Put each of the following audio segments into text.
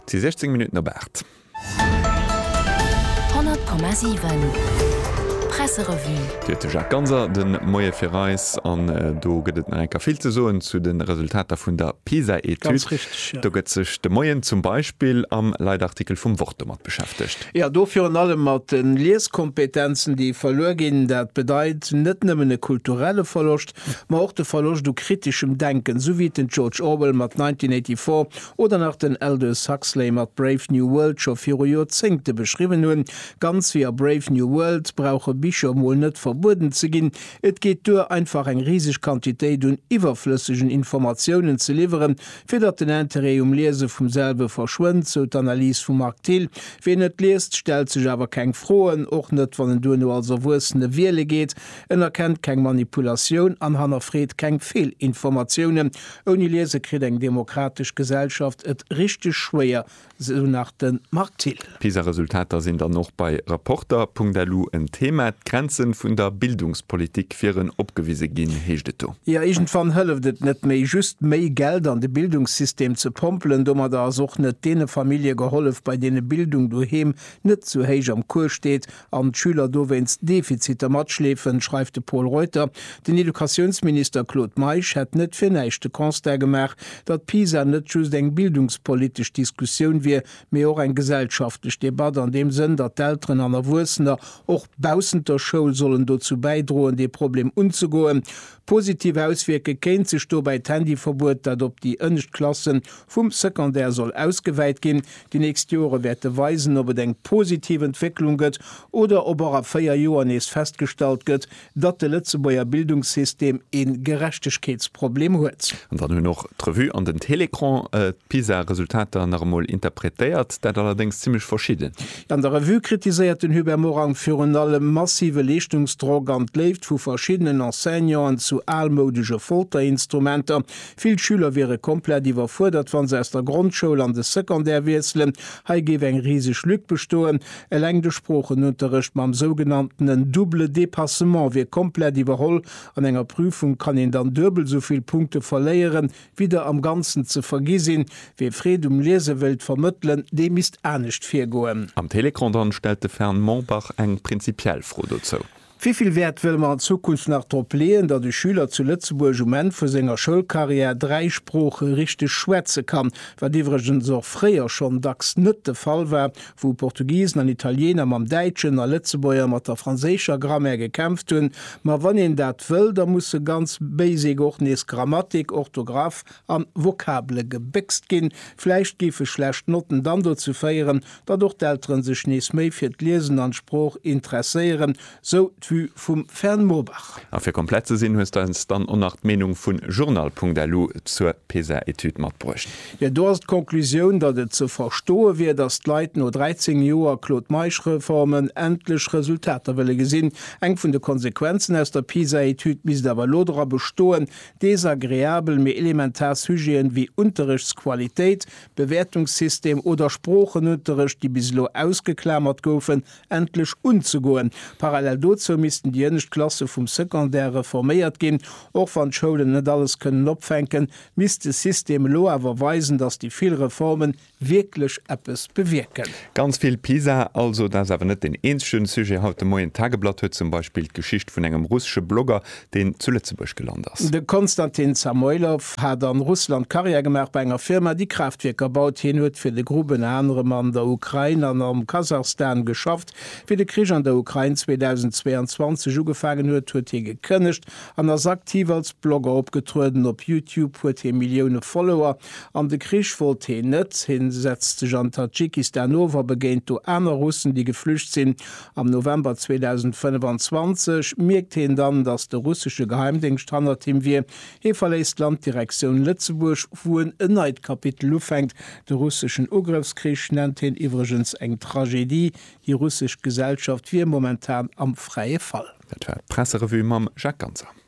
Et si 16 Minutten op 8. 100,7 Presserevue. Dir huet de Jacques Ganser de Moie fir eis an do gëtt et nach eng Kéier vill ze soen zu de Resultater vun der PISA-Etüd. Do gëtt sech de Moien zum Beispill am Leitartikel vum Wort domat beschäftegt. Jo, do virun allem mat de Lieskompetenzen, déi verluer ginn. Dat bedeit net nëmmen e kulturelle Verloscht, ma och de Verloscht u kriteschem Denken, sou wéi et den George Orwell mat 1984 oder nach den Aldous Huxley mat Brave New World scho viru Joerzéngte beschriwwen hunn. Ganz wéi a Brave New World brauche Bicher mol net verbueden ze ginn, et geet duer, einfach eng riseg Quantitéit un iwwerflëssegen Informatiounen ze liwweren, fir datt den Interêt um Liese vum selwe verschwënnt, sou d'Analys vum Marc Thill. Ween net liest, stellt sech awer keng Froen, och net wann en duerno als Erwuessene wiele geet. En erkennt keng Manipulatioun an hannerfreet keng Feelinformatiounen. Ouni Liese kritt eng demokratesch Gesellschaft et richteg schwéier, sou nach de Marc Thill. D'Pisa-Resultater sinn dann och bei Rapporter. Punkt Elu en Thema. D'Grenze vun der Bildungspolitik wieren opgewise ginn, heescht et do. Jo, iergendwann hëlleft et net méi, just méi Geld an de Bildungssystem ze pompelen. Domadder ass och net deene Famillje gehollef, bei deene Bildung doheem net sou héich am Cours steet, an d'Schüler dowéinst Defiziter matschleefen, schreift de Pol Reuter. Den Educatiounsminister Claude Meisch hätt net fir näischt de Constat gemaach, datt PISA net just eng bildungspolitesch Diskussioun wier, mee och eng gesellschaftlech Debatt, an deem Sënn, datt d'Elteren an Erwuessener och baussent der Schoul sollen dozou bäidroen, dee Problem unzegoen. Positiv auswierke kéint sech dobäi d'Handyverbuet, dat op déi ënnescht Klasse vum Secondaire soll ausgewäit ginn. Déi nächst Jore wäerte weisen, ob et eng positiv Entwécklung gëtt oder ob och a véier Joer nees festgestallt gëtt, datt de Lëtzebuerger Bildungssystem ee Gerechtegkeetsproblem huet. An dann hunn och d'Revue an den Télécran d'PISA-Resultater nach emol interpretéiert, dat allerdéngs zimmlech verschidden. An der Revue kritiséiert den Hubert Morang virun allem massive Leeschtungsdrock an d'Léift vu verschiddenen Enseignanten zu almoudege Folterinstrumenter. Vill Schüler wiere komplett iwwerfuerdert, wa se aus der Grondschoul an de Secondaire wiesselen. Hei géif eng riseg Lück bestoen. Eleng de Sproochenunterrecht mam sougenanntenen double dépassement wier komplett iwwerholl. An enger Prüfung kann een dann duebel esou vill Punkte verléieren, Wieder am Ganzen ze vergi sinn. Wee Freed um Liese wëllt vermëttelen, dee misst anescht virgoen. Am Télécran dann stellt de Fern Mombach eng prinzipiell Fro dozou. Wéi vill Wäert wëlle mer an Zukunft nach drop leeën, datt e Schüler zu Lëtzebuerg um Enn vu senger Schoulcarrière dräi Sprooche richteg schwätze kann, wat iwwregens och fréier schonn dacks net de Fall war, wou Portugisen an Italiener mam Däitschen a Lëtzebuerger mat der franséischer Grammaire gekämpft hunn, ma wann een dat wëll, da musse ganz basic och nees Grammatik, Orthographe an Vokabele gebéckst ginn. Vläicht géife schlecht Notten dann dozou féieren, datt och d'Elteren sech nees méi fir d'Liesen an d'Sprooch interesséieren, Sou d'Vue vum Fern Murbach. A fir komplett ze sinn, hues de eis dann och nach d'Meenung vu Journal.lu zur PISA-Etüd matbruecht. Jo, do ass d'Conclusioun, datt et ze verstoe wier, datt d'Leit no 13 Joer Claude-Meisch-Reformen endlech Resultater wëlle gesinn. Eng vun de Konsequenzen aus der PISA-Etüd misst awer elo dra bestoen, desagreabel, mee elementar Sujeten wéi Unterrechtsqualitéit, Bewäertungssystem oder Sproochenunterrecht, déi bis elo ausgeklamert goufen, endlech unzegoen. Parallel dozou missten déi ënnescht Klasse vum Secondaire reforméiert ginn. Och wann d'Schoulen net alles kënnen opfänken, misst de System elo awer weisen, datt déi vill Reformen wierklech eppes bewierken. Ganz vill Pisa also. Dat ass awer net den eenzegen Sujet haut de Moien. D'Tageblatt huet zum Beispill d'Geschicht vun engem russesche Blogger deen zu Lëtzebuerg gelant ass. De Konstantin Samoilov hat an Russland Karriär gemaach bei enger Firma déi Kraaftwierker baut. Hien huet fir de Groupe ënner anerem an der Ukrain an am Kasachstan geschafft. Wéi de Krich an der Ukrain 2022 ugefaangen huet, huet hie gekënnegt an ass aktiv als Blogger opgetrueden. Op Youtube huet hie Millioune Follower an de Krich wollt hien net. Hien setzt sech an Tadschikistan of a begéint do aner Russen déi geflücht sinn. Am November 2025 mierkt heen dann, dass de russesche Geheimdéngscht hannert him wier. Hee verléisst d'Land Direktioun Lëtzebuerg, wou en en neit Kapitel ufänkt. De russeschen Ugrëffskrich nennt heen iwwregens eng Tragedie. Déi russesch Gesellschaft wier momentan am fräie Fall. Dat war d'Presserevue mam Jacques Ganser.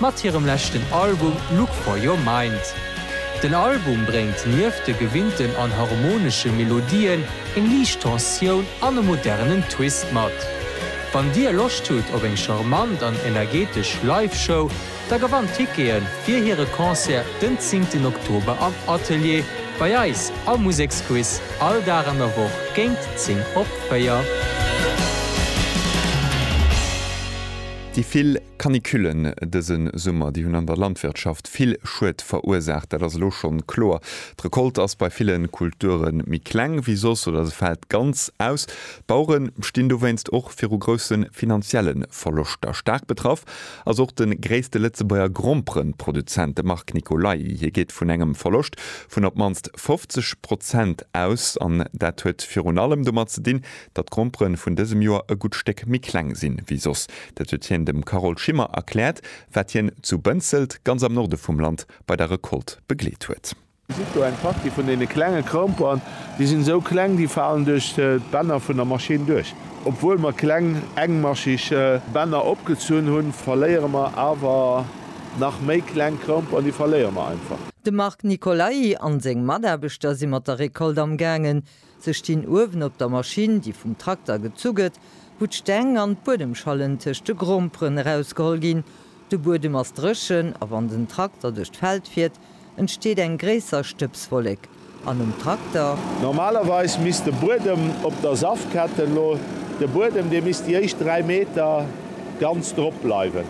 mat hirem leschten Album Look For Your Mind. Den Album bréngt nieft de gewinnten an harmonesche Melodien eng liicht Tensioun an e modernen Twist mat. Wann dir Loscht hutt op eng charmant an energetesch Live-Show, da gewannt Tickete fir hire Concert den zéngten Oktober am Atelier bei eis am Museksquiz all Dag an der Woch géint 10 op 4. Déi vill Canicullen dëse Summer, déi hunn an der Landwirtschaft vill Schued verursaacht, dat ass elo schonn kloer. D'Recolte ass bei ville Kulture méi kleng wéi soss oder se fält ganz aus. D'Bauere stinn dowéinst och viru grousse finanzielle Verloschter. Staark betraff ass och de gréisste Lëtzebuerger Gromperen-Produzent, de Marc Nicolai. Hie geet vun engem Verloscht vun op d'mannst 50 Prozent aus an dat huet virun allem domat ze dinn, Datt d'Gromperen vun dësem Joer e gutt Stéck méi kleng sinn, ewéi soss, dat huet hien dem Carole Schimmer erkläert, wat hien zu Bënzelt, ganz am Norde vum Land, bei der Recolte begleet huet. Dir gesitt do eng Partie vun deene klenge Gromperen. Déi sinn esou kleng, déi falen duerch d'Bänner vun der Maschinn duerch. Obwuel mer kleng, engmascheg Bänner opgezunn hunn, verléiere mer awer nach méi kleng Gromperen. Déi verléiere mer einfach. De Marc Nicolai an seng Mataarbechter si mat der Recolte amgaangen. Se stinn uewen op der Maschinn, déi vum Trakter gezu gëtt, wou d'Steng an d'Buedemschallen tëscht de Gromperen erausgeholl ginn. De Buedem ass dréchen a wann den Trakter duerch d'Feld fiert, entsteet eng gréisser Stëbswollek an um Trakter. Normalerweis misst de Buedem op der Safketten lo, de Buedem, dee misst déi éischt 3 Meter ganz drop bleiwen.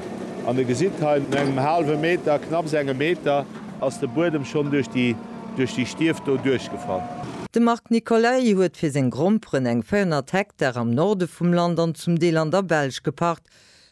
An e gesitt hei, no engem haalwe Meter, knapps engem Meter, ass de Buedem schonn duerch déi. Duerch déi Stief do duerchgefall. De Marc Nicolay huet fir seng Gromperen eng 400 Hektar am Norde vum Land an zum Deel an der Belsch gepacht.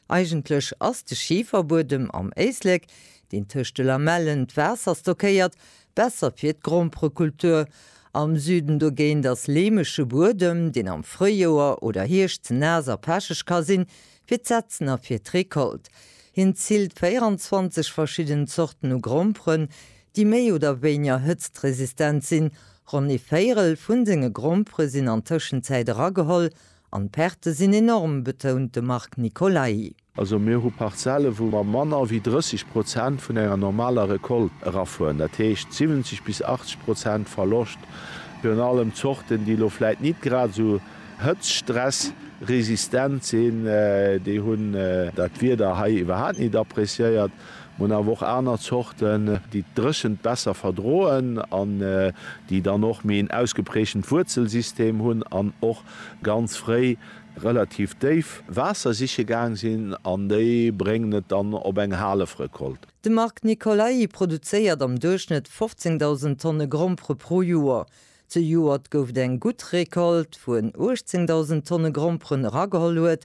Eigentlech ass de Schiferbuedem am Éislek, deen tëscht de Lamellen d'Waasser stockéiert, besser fir d'Gromperekultur. Am Süden dogéint ass leemege Buedem, deen am Fréijoer oder Hierscht ze naass a pecheg ka sinn, fir d'Setzen a fir d'Recolte. Hien zilt 24 verschidden Zorten u Gromperen, déi méi oder wéinger hëtztresistent sinn, ronn ee Véirel vu senge Grompere sinn an Tëschenzäit erageholl an d'Perte sinn enorm, betount de Marc Nicolai. Also mir hu Parzelle wou mer manner wéi 30 Prozent vun enger normaler Recolte erafueren, dat heescht 70 bis 80 Prozent Verloscht, virun allem Zorten, déi elo vläit nit grad esou hëtztstressresistent sinn, déi hunn dat Wieder hei iwwerhaapt nit appreciéiert. Mir hunn awer och aner Zorten, déi d'Dréchent besser verdroen an déi dann och méi en ausgeprägtent Wuerzelsystem hunn an och ganz fréi relativ déif Waasser siche gaang sinn an déi bréngen et dann op eng Halefrecolte. De Marc Nicolai produzéiert am Duerchschnëtt 15.000 Tonne Grompere pro Joer. Zejoert gouf et eng gutt Recolte, wou en 18.000 Tonne Gromperen erageholl huet,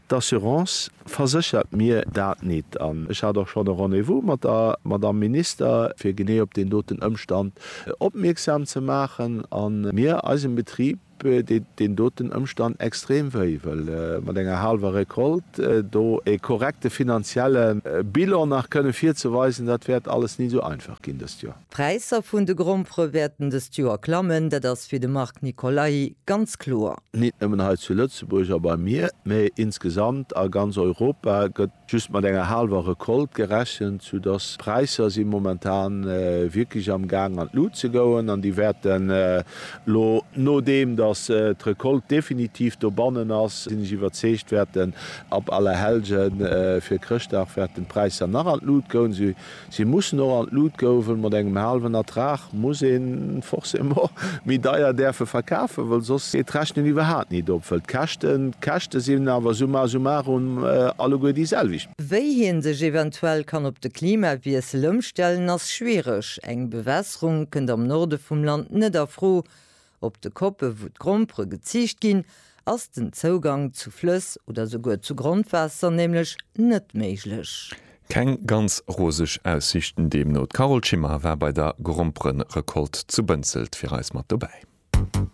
D'Assurance verséchert mir dat nit an ech hat och schonn e Rendez-vous mat der Madamm Minister, fir genee op deen doten Ëmstand opmierksam ze maachen. A mir, eisem Betrib, deet deen doten Ëmstand extrem wéi, well mat enger haalwer Récolte do e korrekte finanzielle Bilan nach kënne virzeweisen, dat wäert alles nit esou einfach ginn dëst Joer. D'Präisser vun de Grompere wäerten dëst Joer klammen, dat ass fir de Marc Nicolai ganz kloer. Nit nëmmen hei zu Lëtzebuerg a beim Mier, mee insgesamt a ganz Europa gëtt just mat enger haalwer Recolte gerechent, sou dass d'Präisser si momentan wierklech am Gaang an d'Lut ze goen an déi wäerten elo, nodeem dass d'Recolte definitiv dobannen ass, sinn ech iwwerzeegt, wäerten ab Allerhellgen fir Chrëschtdag wäerten d'Präisser nach an d'Lut goen, Si mussen och an d'Lut gouwen. Mat engem haalwen Ertrag muss een forcément méi deier däerfe verkafen, well soss geet d'Rechnen iwwerhaat nit op, well d'Käschten d'Käschte sinn awer summa summarum alleguer déi selwecht. Wéi hien sech eventuell kann op de Klimawiessel ëmstellen ass schwiereg. Eng Bewässerung kënnt am Norde vum Land net a Fro, Op de Koppe wou d'Grompere geziicht ginn, ass den Zougang zu Flëss oder souguer zu Grondwaasser nämlech net méiglech. Keng ganz roseg Aussiichten deemno. D'Carole Schimmer war bei der Gromperenrecolte zu Bënzelt fir eis mat dobäi.